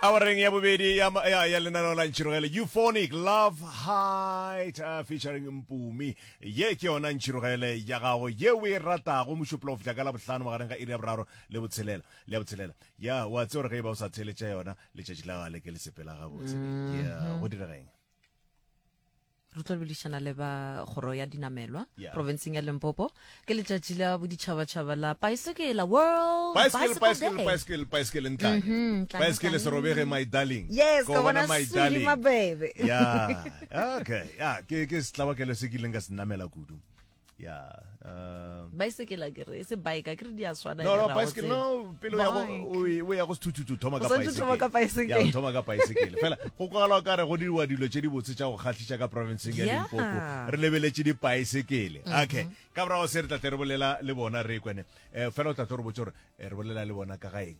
awareng ya bobedi ya, ya, ya lenaneo la ntšhirogele euphonic love height uh, featuring mpumi ye ke yona ntšhirogele ya gago ye o e ratago mošupolo go fihla ka labohlano magareng ga iri ya boraro le botshelela le ya botshelela ya wa tse gore ge e ba o sa theletša yona letšatši la gale ke le sepela gabotse ya go dirageng re tlo lebedišana le ba kgoro ya dinamelwa yeah. provinceng ya limpopo ke letšatši la boditšhabatšhaba la paesekela world paesekele ntlane mhm, paesekele se robege my darling yes ka bona sudi mabebe ya okay ya ke ke setlabakelo se ke ileng ka se namela kudu baesekela ke re se bike ke re di a swana no no baesekela no pele ya go o ya go sethuthuthu thoma ka baesekela thoma ka baesekela ya thoma ka baesekela fela go kwala ka re go diriwa dilo tše di botse tša go kgatlhisa ka province ya Limpopo re lebeletše di baesekele mm-hmm. okay ka bra se re tla tle re bolela le bona re kwene eh, fela o tla tlo re botse gore eh, re bolela le bona ka ga eng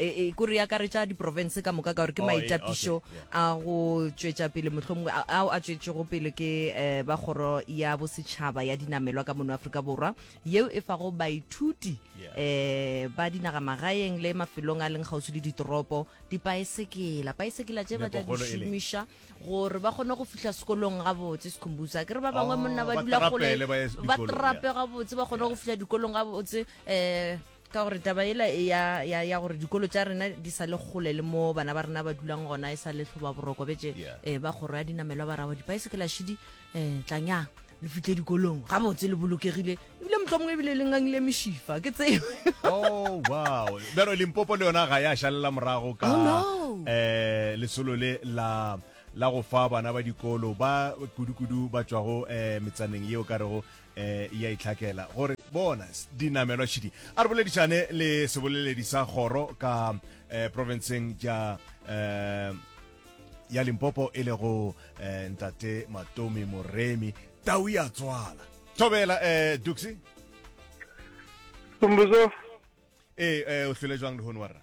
e, e kore ya karetša diprovince ka moka ka gore ke oh, maitapišo a go tšwetša pele mohlomongwe ao a tšwetšego pele ke um ba kgoro ya bosetšhaba ya dinamelwa ka mono aforika borwa yeo e fago baithuti um ba dinagamagaeng le mafelong a leng kgauswi le ditoropo dipaesekela paesekela tše ba tla di šomiša gore ba kgone go fihla sekolong gabotse sekhumbutsa ke re ba bangwe oh, monna ba dula gole ba trape gabotse ba kgone go fihla dikolong gabotse um ka gore taba ela ya, ya, ya gore dikolo tša rena di sa le kgole le mo bana ba rena ba dulang gona e sa le tlhoba boroko betse yeah. eh, ba kgoro ya dinamelwa ba rabo dipaesekela šidi eh, tlanyang le fitle dikolong ga botse le bolokegile ebile motlo mongwe ebile le ngangile mešifa ke tseo oh, wow bjalo limpopo le yona ga ya šalela morago ka um lesolo le la la go fa bana ba dikolo ba kudu-kudu ba tšwago um metsaneng yeo ka rego e a itlhakela gore bona dinamelwa šidi a re boledišane le seboleledi sa kgoro ka eh, provinceng ja eh, ya limpopo e lego eh, ntate matomi moremi tau ya tswala thobela eh, duxi Tumbuzo. ee eh, o hlwele jwang lehono wa rra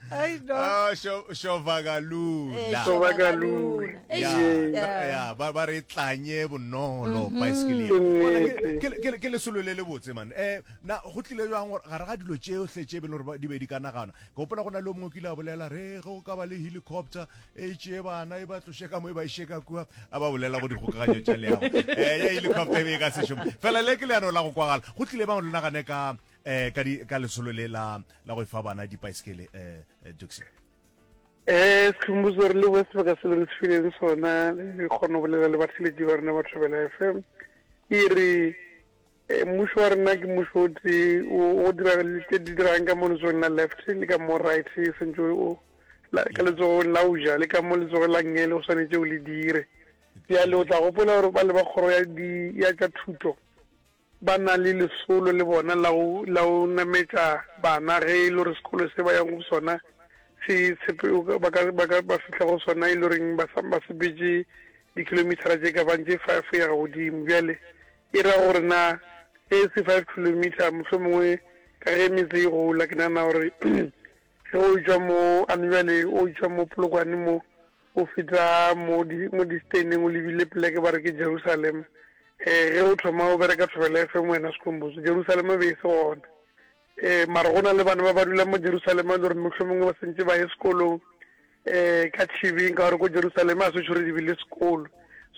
Ai, no. Ah, sho- shovakalula Eh, Yeah. Shovakalula. Eish, Yeah, yeah. ba- yeah, ba ba re tlanye bonolo baesekele Ke nnete. Ke- ke ke lesolo le le botse man um na go tlile jang gore gare ga dilo tšeotlhe tše e be le gore ba- di be di ka nagana ke gopola go na le o mongwe o kile a bolela re ge o ka ba le helicopter e tšee bana e ba tloše ka mo e ba iše ka kua a ba bolela go dikgokaganyo tša leago um ya helicopter e be e ka sešomo fela le ke leano la go kwagala go tlile bang le nagane ka eh ka di ka lesolo le la la go fa bana di bicycle eh, eh Duxie eh sikhumbuzo re le west ba ka se le ntshileng sona le kgona go bolela le batheletši ba rena ba Thobela FM e re eh, mmušo wa rena ke mmušo o tee o dira le tse di dirang ka mo letsogong la left le ka mo right e sentse o ka letsogong la uja le ka mo letsogong la ngele o swanetse o le dire bjale o tla gopola gore ba le ba kgoro ya tša thuto Ba na le lesolo le bona la go la go nametša bana ge e le gore sekolo se ba yago go sona se tshepe ba ka ba ka ba fihla go sona e le goreng ba sa ba sepetše dikilomithara tše ka bang tše five go ya ga godimo. Bjale e ra gore na ge e se five kilometre mohlomongwe ka ge metse e gola ke nagana gore Ge o tšwa mo, a no bjale o tšwa mo Polokwane mo, o feta mo di, mo Disteneng o lebile poleke ba re ke Jerusalema. Um, ge o thoma o bereka Thobela FM wena Skhumbuzo, Jerusalema e be e se gona. Um, mara go na le bana ba ba dulang mo Jerusalema e le gore mohlomongwe ba sentše ba ye sekolong, um, ka Tšhibing, ka gore ko Jerusalema ga se tšhwere di be le sekolo.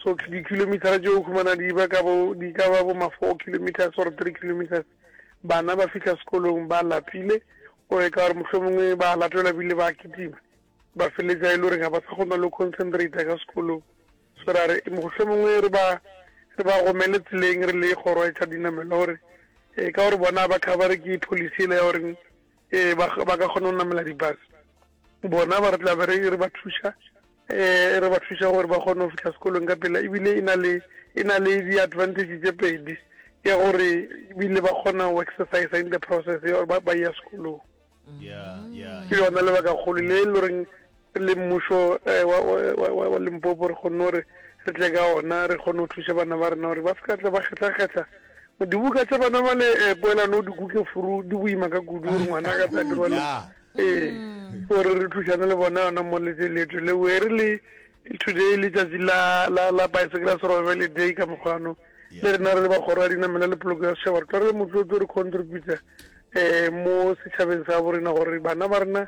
So, di-kilometer-ra tšeo o humana di ba ka bo, di ka ba bo ma four kilometres or three kilometres. bana ba fihla sekolong ba lapile o e ka gore mohlomongwe ba latelwa bile ba kitima ba feletsa e le gore ga ba sa kgona le concentrate ka sekolong so ra re mohlomongwe re ba re ba gomele tseleng re le kgoro ya tša dinamelo gore e ka gore bona ba covere ke policy ele ya goreng um ba ka kgona go namela di-bus bona ba re tla be re ba thuša um re ba thuša gore ba kgone go fitlha sekolong ka pela ebile e na le e na le di-advantage tse pedi ya gore ebile ba kgona go exercise in the process ya gore ba ya sekolong ke yona lebaka kgolo le e le goreng le mmušo wa Limpopo re kgonne gore re tle ka ona, re kgone go thuša bana ba rena gore ba se ka tla ba kgetlakgetla dibuka tša bana ba le poelano o dikuke furu di boima ka kudu gore ngwana ka tla dirwa le ee gore re thušane le bona yona mo letse leto le we re le today le tšatši la la la bicycle survival day ka mokgwano le rena re le ba kgoro ya dinamela le poloko ya setšhaba re tla re le motlotlo re contributor eh mo setšhabeng sa borena gore bana ba rena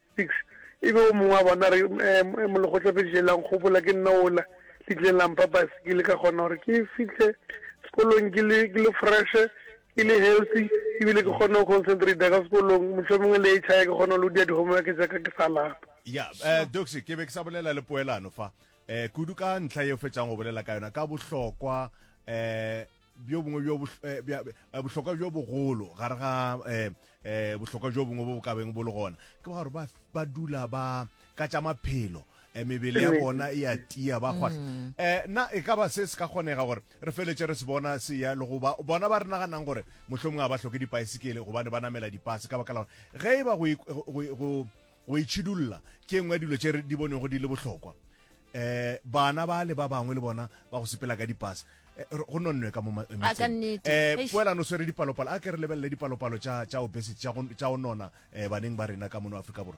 6 e be o mongwe wa bona a re, Ee, mo lekgotla fediše la nkgopola, ke nna ola le tlileng la mpha baesekele ka kgona gore ke fihle sekolong ke le, ke le freshe, ke le healthy e bile ke kgone go concentrator ka sekolong, mohlomongwe le HI ke kgone go loader di-homework tša ka ke sa lapa. Ya, eh, Doxy, ke be ke sa bolela le poelano fa, eh, kudu ka ntlha ye o fetšang go bolela ka yona, ka bohlokwa, eh, bjo bongwe bjo bohlokwa bjo bogolo gare ga bohlokwa bjo bongwe bo bo kabeng bo le gona ke ba gore ba dula ba ka tša maphelo mebele ya bona e a tia ba kgwahla um na e ka ba se se ka kgonega gore re feletse re se bona se ya le goba bona ba re naganang gore mohlho mongwe a ba tlhoke dipaesekele gobane ba namela dipase ka baka la gore ge e ba go itšhidulla ke engwe dilo tše di bonego di le bohlokwa um bana ba le ba bangwe le bona ba go sepela ka dipasa um go nonnwe ka mo metseng poelano o swere dipalopalo a ke re lebelele dipalopalo tša obesity tša go nona um baneng ba rena ka mono aforika borwa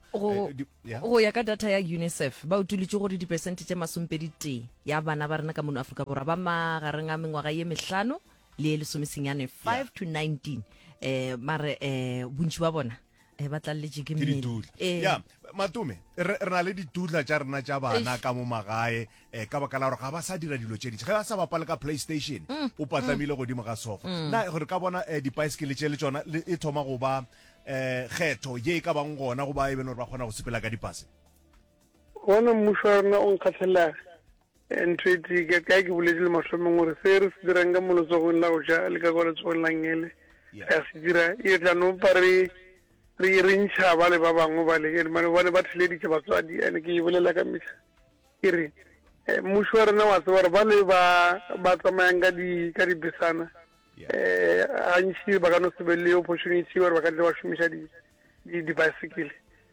go ya ka data ya unicef ba utolotse gore dipesente tše masompedi tee ya bana ba rena ka mono aforika borwa ba magareng a mengwaga ye mehlano le lesomesenyane 5 to 19 um mare um bontši ba bona e ba tlalletše ke mmele eh. ya matome re na le ditudla tša rena tša bana ka mo magae um ka baka la gore ga ba sa dira dilo tše dintši ge ba sa bapale ka playstation mm, o patlamile mm. godimo ga sofa mm. na gore ka bona um dipaesekele tše le tsona e thoma go ba um kgetho ye e ka bang gona go ba e bele gore ba kgona go sepela ka dipase gona mmušo wa rena o nkgatlhelega Ntwetike, Ka ke boletšile mohlomong gore se re se dirang ka mo letsogong la go ja le ka kwa letsogong la ngele re a se dira, e tla no pa re re re ntšha ba le ba bangwe ba le ene mane bane ba theleditše batswadi ene ke e bolela ka mehla ke re eh, mmuši wa rena wa tseba gore ba le ba ba tsamayang ka di ka dibesana eh gantši ba ka no se be le opportunity gore ba ka tle ba šomiša di di bicycle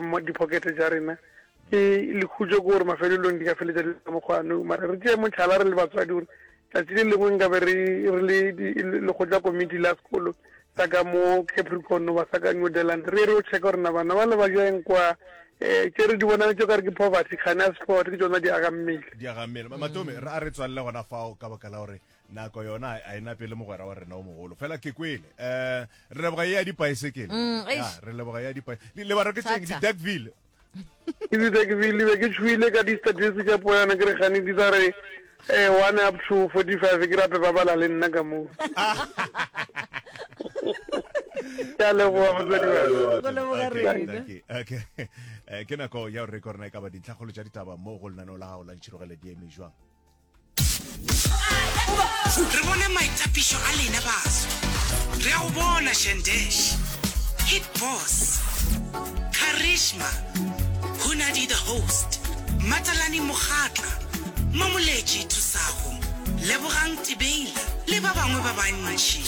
Mo diphokete tša rena. Ke lekhutšo ke gore mafelelong di ka feletša di le ka mokgwa nou. Mara re tšee mohlala re le batswadi gore tšatši le lengwe nkabe re re le lekgotla komiti la sekolo sa ka mo Capricorn goba sa ka New Deland re ye re yo checka gore na bana bale ba ja eng kwa um tše re di bonang tšo kare ke poverty kgane a sport ke tšona di aga mmele. Di aga mmele. Matome, a re tswalele gona fao ka baka la gore nako yona a e napele mogwera wa rena o mogolo fela ke kwele um re leboga ye ya dipaesekele mm, re leboga ya dipaesekele lebara ke tseng di-darkville ke di-darkville be ke tshwile ka di-statistic tša poyana ke re gane di tsa re eh, one up to forty five ke rape ba bala le nna ka moo ya leboga motsadi ke nako ya gore re korona e ka ba dintlhakgolo tša ditaba mo go lenaneo la gago la ntšhirogeledi eme jwang re bone maitapišo a lena baso re a go bona shandesh hit boss karishma hunadi the host matalani mogatla mamoletši thusago lebogang tibeila le ba bangwe ba bantši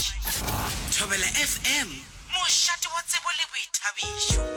thobela fm mošate wa tsebo le boithabišo